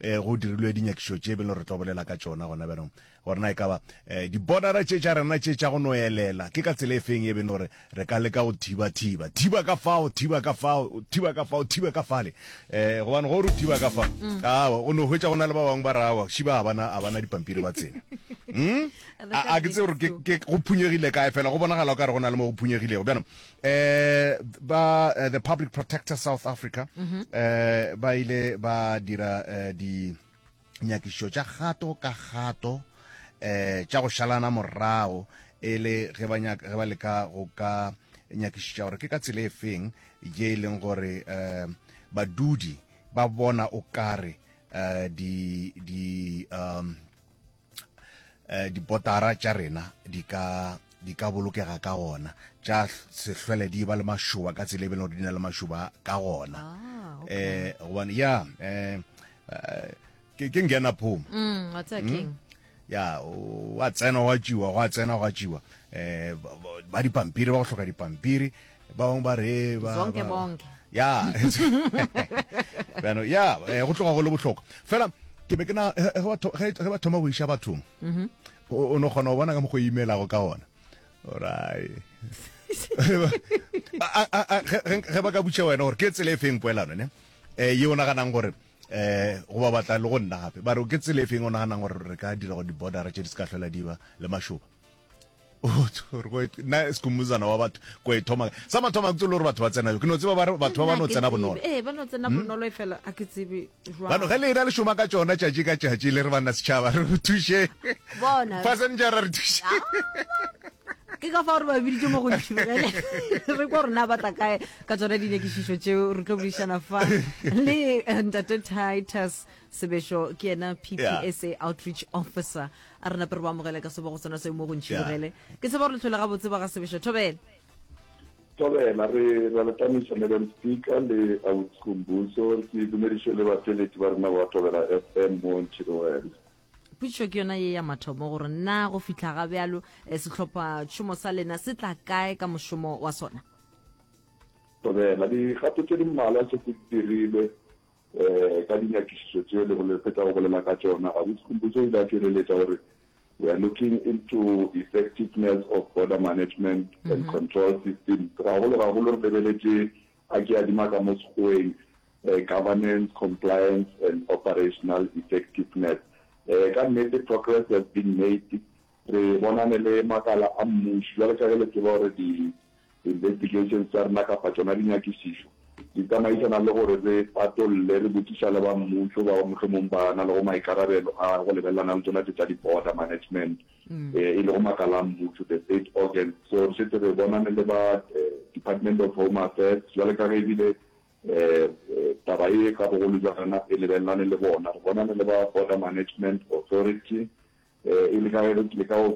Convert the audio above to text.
eh, go dirilwe dinyakišo tše beno re tlo bolela ka tšona gona bjanong gore na e ka ba eh, dibodara tše tša rena tše tša go no elela ke ka tsela e feng e beno re re ka leka go thiba-thiba thiba ka fao thiba ka fao thiba ka fao thiba ka fale um gobane go re thiba ka fa mm. aa o no hwetsa go na le ba bangwe ba rawa šiba a bana a bana dipampiri ba tsena hmm? a ke tse gore go phunyegile kae fela go bonagala o ka re go na le mo go phunyegilego bjanong eh ba eh, the public protector south africa eh ba ile ba dira eh, di nyakišo tša gato ka gato eh tša go šalana morago e le ge ba nyaka ge ba leka go ka nyakišiša gore ke ka tsela e feng ye e leng gore eh badudi ba bona o kare eh di di um eh, dipotara tša rena di ka di ka bolokega ka gona tša sehlwele di ba le mašoba ka tsela e bele gore di na le mašoba ka gona um gobane ya um ke ngena phoma mm, hmm? ya wa tsena wa tšiwa gwa tsena gwa tšiwa um ba dipampiri ba go hloka dipampiri bangwe ba re ba- Zonke ba- bonke. ya bjano ya eh, go tloga go le bohlokwa fela ke be ke na ge- ge ba tho- ge ge ba thoma go iša bathong Mhm. o o no kgona go bona ka mokgo e imelago ka ona orai A- a- a- ge- ge ge ba ka butša wena gore ke tsela e feng poelano ne um ye o naganang gore um go ba batla le go nna gape ba re ke tsela e feng o naganang gore re ka dira gore di-bordera tše di se ka tlhola di ba le mašoba na sekumuzana wa batho ko e thoma sa mathoma kutse le gore batho ba tsena yo ke no tseba ba batho ba ba no tsena bonolo eh ba no tsena hmm? bonolo e fela a ke tsebe jwa ba no ge le na le shoma ka tsona tšatši ka tšatši le re bana setšhaba re go thushe bona passenger re thushe ke ka fa gore ba biditse mo go ntšhibele re kwa rona ba tla kae ka tsona dinekišišo tseo re tlo buišana fa le eh, ntate titus sebešo ke ena ppsa outreach officer A re nape re bo amogele ka sebogo sona seo mo go ntšhibogele. Ke tseba gore letlhole gabotse ba ga sebešo. Thobela. Thobela, re ra le tamisa Madam Speaker le Ausi Khumbuso. Ke dumediše le bafeletši ba rena ba Thobela FM mo Ntšhibogele. Potšišo ke yona ye ya mathomo gore na go fihla ga bjalo eh, sehlopha tšhomo sa lena se tla kae ka mošomo wa sona? Thobela, dikgato tše di mmalwa tše ke di dirile Ee, ka dinyakišišo tše le bole, fetago bolela ka tšona, Gabotse Khumbudzo o ile a tšwereletša gore, We are looking into effectiveness of border management and control systems, gagolo-gagolo re lebeletše a ke adima ka mo Sekgoeng, eh, governance, compliance and operational effectiveness. Eh, ka nnete progress has been made, re bonane le makala a mmušo, bjale ka ge le tseba gore di Investigations tša rena kapa tšona dinyakišišo di tsamaisana le gore re patolle, re botšiša le ba mmušo bao mohlomong ba na lego maikarabelo a go lebelelana le tsona tše tša di-border management, e lego makala a mmušo, the state organs. So re šetše re bonane le ba Department of Home Affairs bjale ka ge e bile taba ye ka bogolo bja rena e lebelelane le bona, re bonane le ba Border Management Authority e le ka ge re leka go.